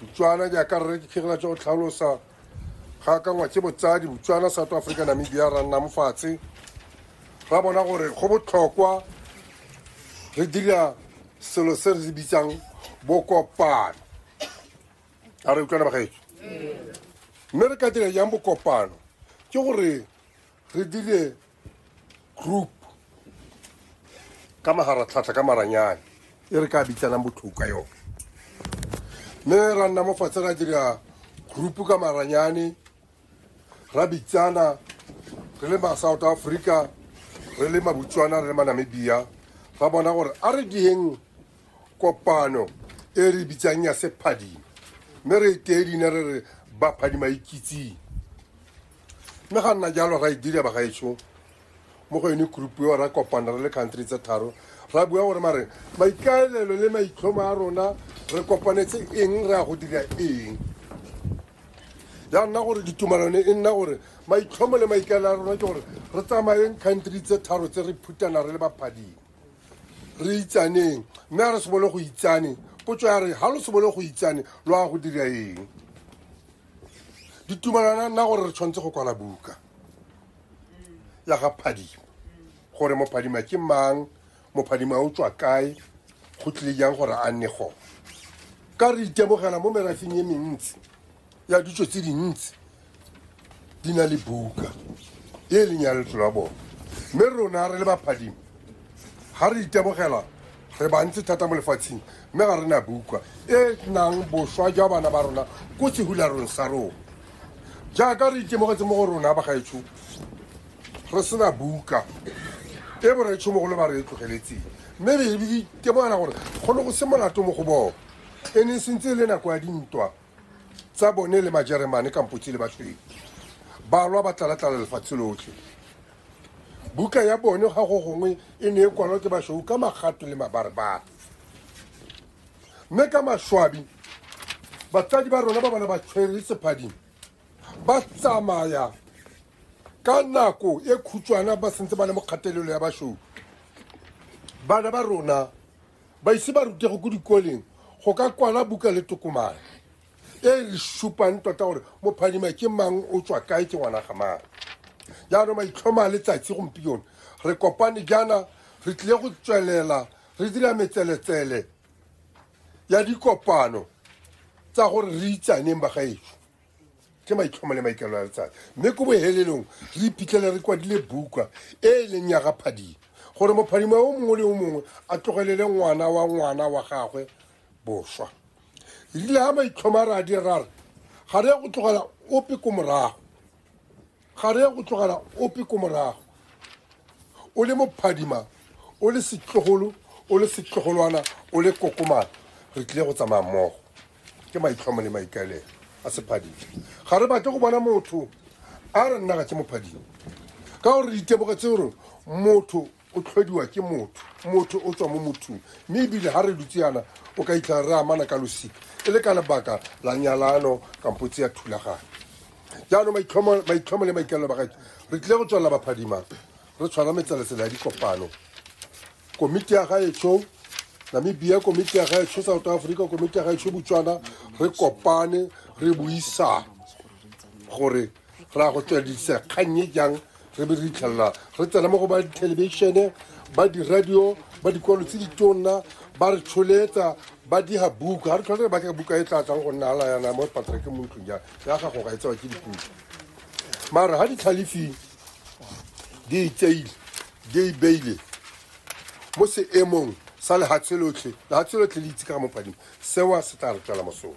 botswana jaaka rre ke kgegela tsa go tlhalosa ga akangwa ke botsadi botswana south africa namibia ra nna mofatshe ra bona gore go botlhokwa re dira selo se re se bitsang bokopano a re utlwana bagaetso mme re ka dira jang bokopano ke gore re dire group ka magaratlhatlha ka maranyane e re ka bitsanang botlhoko ka yone mme ra nna mo fatshe ra dira group ka maranyane ra bitsana re le ma-south africa re le mabutswana re le manamibia ra bona gore a re dieng kopano e re bitsang ya sephadima mme re e tee dine re re baphadima ikitseng mme ga nna jalo ra e dira ba gaetsho mo go yone group yo ra kopana re le country tse tharo ra bua gore mare maikaelelo le maitlhomo a rona re kopanetse eng re ya go dira eng ya nna gore ditumalano e nna gore maitlhomo le maikaelelo a rona ke gore re tsamayeng country tse tharo tse re phutana re le baphading re itsaneng mme a re sebole go itsane potso ya re ga lo sebole go itsane lo ya go dira eng ditumalana nna gore re tshwanetse go kwala buka ya ga phadima gore mophadima ke mang mophadima o tswa kae go tlile jang gore a nne gone ka re itemogela mo merafeng e mentsi ya ditso tse dintsi di na le buka e leng ya letso la bone mme rona re le baphadima ga re itemogela re bantsi thata mo lefatsheng mme ga re na bukwa e nang boswa jwa bana ba rona ko sehularong sa rona jaaka re itemogetse mo go rona ba gaetsho re sena buka e boretshomogolo ba re e tlogeletseng mme re itemogela gore go ne go se molato mo go bone e ne e sentse e le nako ya dintwa tsa bone le majeremane kampotse le baswedi balwa ba tlalatlala lefatshe lotlhe buka ya bone ga go gongwe e ne e kwalwa ke basweu ka magato le mabarebare mme ka maswabi batsadi ba rona ba bana ba tshwere sephading ba tsamaya ka nako e khutshwana ba sentse ba le mo kgatelelo ya basweu bana ba rona ba ise ba rutego ko dikoleng go ka kwala buka le tokomane e re supang tota gore mophadima ke mang o tswa kae ke ngwana ga mang jaanong maitlhoma a letsatsi gompione re kopane jaana re tlile go tswelela re dira metseletsele ya dikopano tsa gore re itsaneng bagaetso ke maitlhomo le maikelo a letsatsi mme ko bohelelong re iphitlhele re kwadile buka e e leng ya ga phadima gore mophadima o mongwe le o mongwe a tlogelele ngwana wa ngwana wa gagwe boswa re rile ga maitlhoma re a di rare ga re ya go tlogela ope ko morago ga re ya go tlogela ope ko morago o le mophadima o le setlogolo o le setlogolwana o le kokomana re tlile go tsamaya mmogo ke maitlhomo le maikaelelo a sephadima ga re batle go bona motho a re nna ga ke mophadima ka gore ditebogo tse gore motho o tlhodiwa ke motho motho o tswa mo mothong mme ebile ga re dutse yana o ka itlha re amana ka losika e le ka lebaka la nyalano kampo tse ya thulaganyo jaanong maitlhomo le maikalelo ba gaetsho re tlile go tswelela baphadimang re tshwara metseletsela ya dikopano komiti ya gaetsho namibia komiti ya gaetsho south africa komiti ya gaetsho botswana re kopane re buisane gore go raya go tsweledisa kgang e jang re be re itlhelela re tsena mo go ba dithelebishene ba diradio ba dikwalo tse ditonna ba re tsholetsa ba diga buka ga re tlhole re batla buka e tla tlang go nna ala yana mo patrek mo ntlong ya ya gago ga e tsewa ke dipuka mara ga ditlhalefing di itseile di e beile mo seemong sa lehatshe lotlhe lehatshe lotlhe le itse ka ga mopadimo sewa se tla re tswela mosola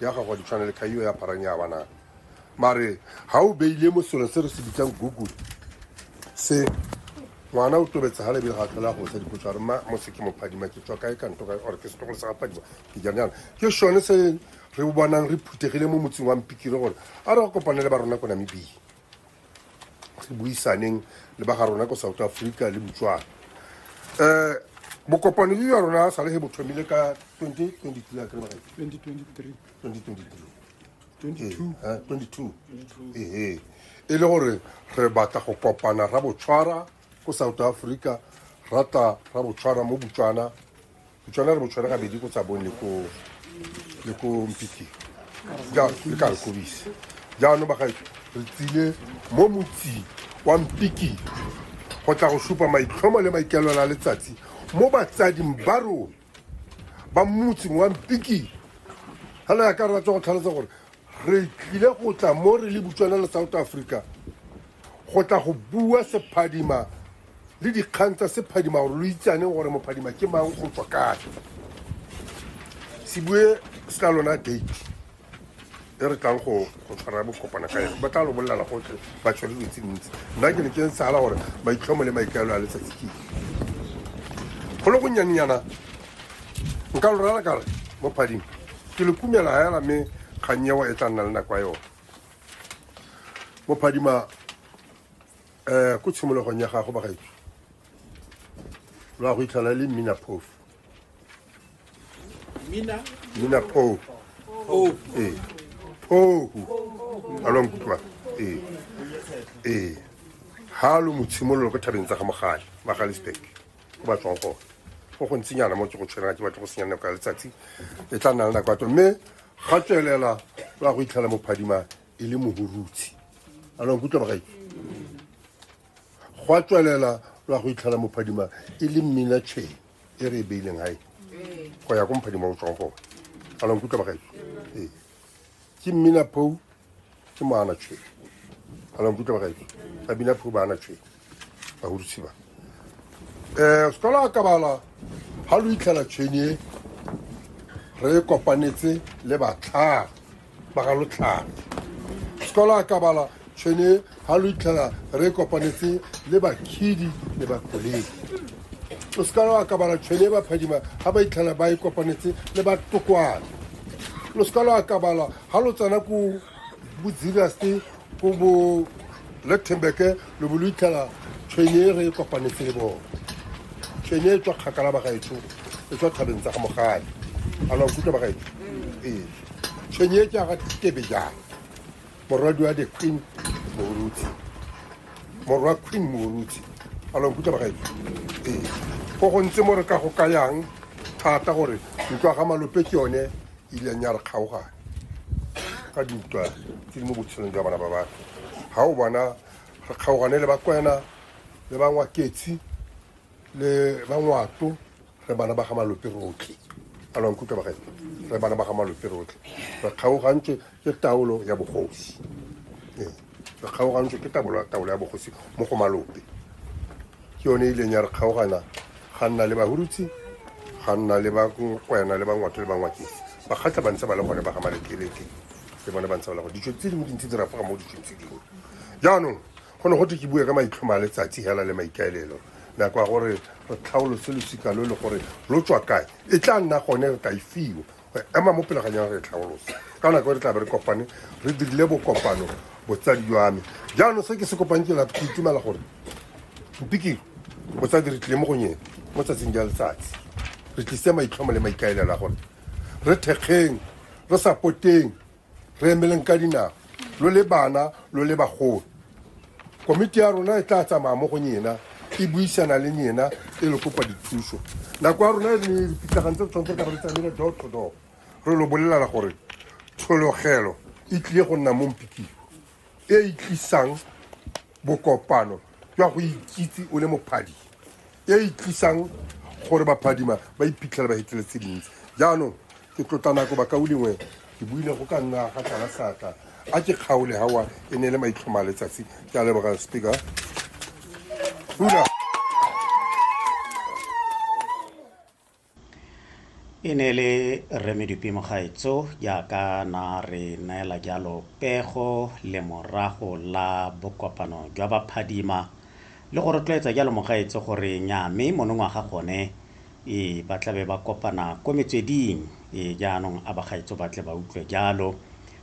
ya gago di tshwana le kaiwa ya parang ya banang mare ga o beile mo selong se re se bitsang google se ngwana o tobetsa ga lebile ga tlhola go sa dipotso a re ma mo se ke mophadima ke tswa kae kanto kae ore ke setogolo sa gaphadima ke jang jana ke sone se re bonang re phuthegile mo motseng wa mpikire gore a re go kopane le ba rona ko namibia re buisaneng le ba ga rona ko south africa le botswana um bokopano jo jwa rona sa le ge bo thomile ka 2022 akere baga 2023 2022 ehe e le gore re batla go kopana ra botshwara ko south africa rata ra botshwana mo botswana botswana re botshwana gabedi ko tsabong le ko mpiki le ka nkobise jaanong bagaetso re tsile mo motsing wa mpiki go tla go supa maitlhomo le maikelola letsatsi mo batsading ba rona ba motseng wa mpikile ga le ya ka rra tswa go tlhalosa gore re tlile go tla mo re le butswana le south africa go tla go bua sephadima le dikgang tsa sephadima gore lo itsaneng gore mophadima ke mang go tswa kae se bue se tla lona date e re tlang go tshwara bokopana ka yone ba tla lo bolela gotlhe ba tshwere dilo tse dintsi nna ke ne ke ntsala gore maitlhomo le maikaelo a letsatsi ke go le go nyannyana nka lo rala kare mo phading ke le kumela ga ela mme kgannyewa e tla nna le nako ya yone mo phadima um ko tshimologong ya gago bagaetso lo ya go itlhela le mmina phofu Mina. Mina Pou. Pou. Eh. Pou. Alwa nkutlwa. Eh. Eh. Ha lo motshimololo ko thabeng tsa ga mogale, Magalisburg. Go ba tswang go. Go go ntsinyana mo ke go tshwela ke batho go senyana ka letsatsi. E tla nna le nako atlo mme ga tswelela ba go itlhela mo phadima e le mohurutsi. Alwa nkutlwa bagae. gwa tswelela lwa go itlhela mophadima e le mmina chain e re e beileng gae go ya ko mophadima o tswang gone a lwang kutlwa bagae ee ke mmina pou ke moana chain a lwang kutlwa bagae ba bina pou ba ana chain ba hudutsi ba um se tola akabala ga lo itlhela chain e re e kopanetse le batlhare ba ga lotlhano sekolo a ka bala tshwene ga lo itlhela re kopanetse le bakhidi le bakoledi o seka lo akabala tshwene e baphadima ga ba itlhela ba e kopanetse le batokwane lo seka lo akabala ga lo tsena ko bodzirase ko bo lectenbeke lo bo lo itlhela tshwene e re e kopanetse le bone tshwene e tswa kgakala bagaetsho e tswa thabeng tsa ga mogale a lo nkutlwa bagaetsho ee tshwenye e tsa ga tebe jang morwadi wa the queen moruti morwa queen moruti a lo nkutlwa bagae ee go go ntse mo re ka go ka yang thata gore ntlwa ga malope ke yone e ileng ya re kgaogane ka dintwa tse di mo botshelong jwa bana ba batho ga o bona re kgaogane le bakwena le bangwaketsi le ba ngwato re bana ba ga malope rotlhe a lwa nkutlwa bagae re bana ba ga malope rotlhe re kgaogantswe ke taolo ya bogosi Ee, re kgaogantswe ke taolo taolo ya bogosi mo go malope ke yone e ileng ya re kgaogana ga nna le bahurutsi ga nna le bakwena le bangwato le bangwakeng bakgatla ba ntse ba le gone ba ga malekeleke le bone ba ntse ba le gone ditso tse dingwe dintsi di rafoga mo ditsong tse dingwe jaanong Go ne go twe ke bue ka maitlhomo a letsatsi hela le maikaelelo. Nako ya gore re tlhaolose losika lo le gore lo tswa kae e tla nna gone re ka e fiwa go ema mo pele ga nyana re tlhaolose ka nako e re tla be re kopane re dirile bokopano botsadi jwa me jaanong se ke se kopang ke lato ke itumela gore mpikiro botsadi re tlile mo gonyeng mo tsatsing ja letsatsi re tlise maitlhomo le maikaelela gore re thekgeng re sapoteng re emeleng ka dinao lo le bana lo le bagolo komiti ya rona e tla tsamaya mo go nyena e buisana le nyena e le kopa dithuso nako ya rona e ne dipitlagane tse tshwanetse ka re tsamile door to door re lo bolelala gore tshologelo e tlile go nna mo mpikilo e e tlisang Bokopano jwa go ikitse o le mophadi e e tlisang gore baphadima ba iphitlhela ba hetile tse dintsi jaanong ke tlotla nako bakao lengwe ke buile go ka nna ga tlala seatla a ke kgaole gawa e ne e le maitlhoma a letsatsi ke a leboga speaker Hula. E ne e le Rre Medupi Mogaetso jaaka na re neela jalo pego lemorago la bokopano jwa baphadima le go rotloetsa jalo Mogaetso gore nyaa mme monongwaga gone e ba tlabe ba kopana ko metsweding e jaanong a bagaetso ba tle ba utlwe jalo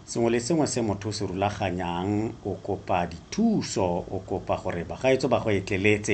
sengwe le sengwe se motho o se rulaganyang o kopa dithuso o kopa gore bagaetso ba go etleletse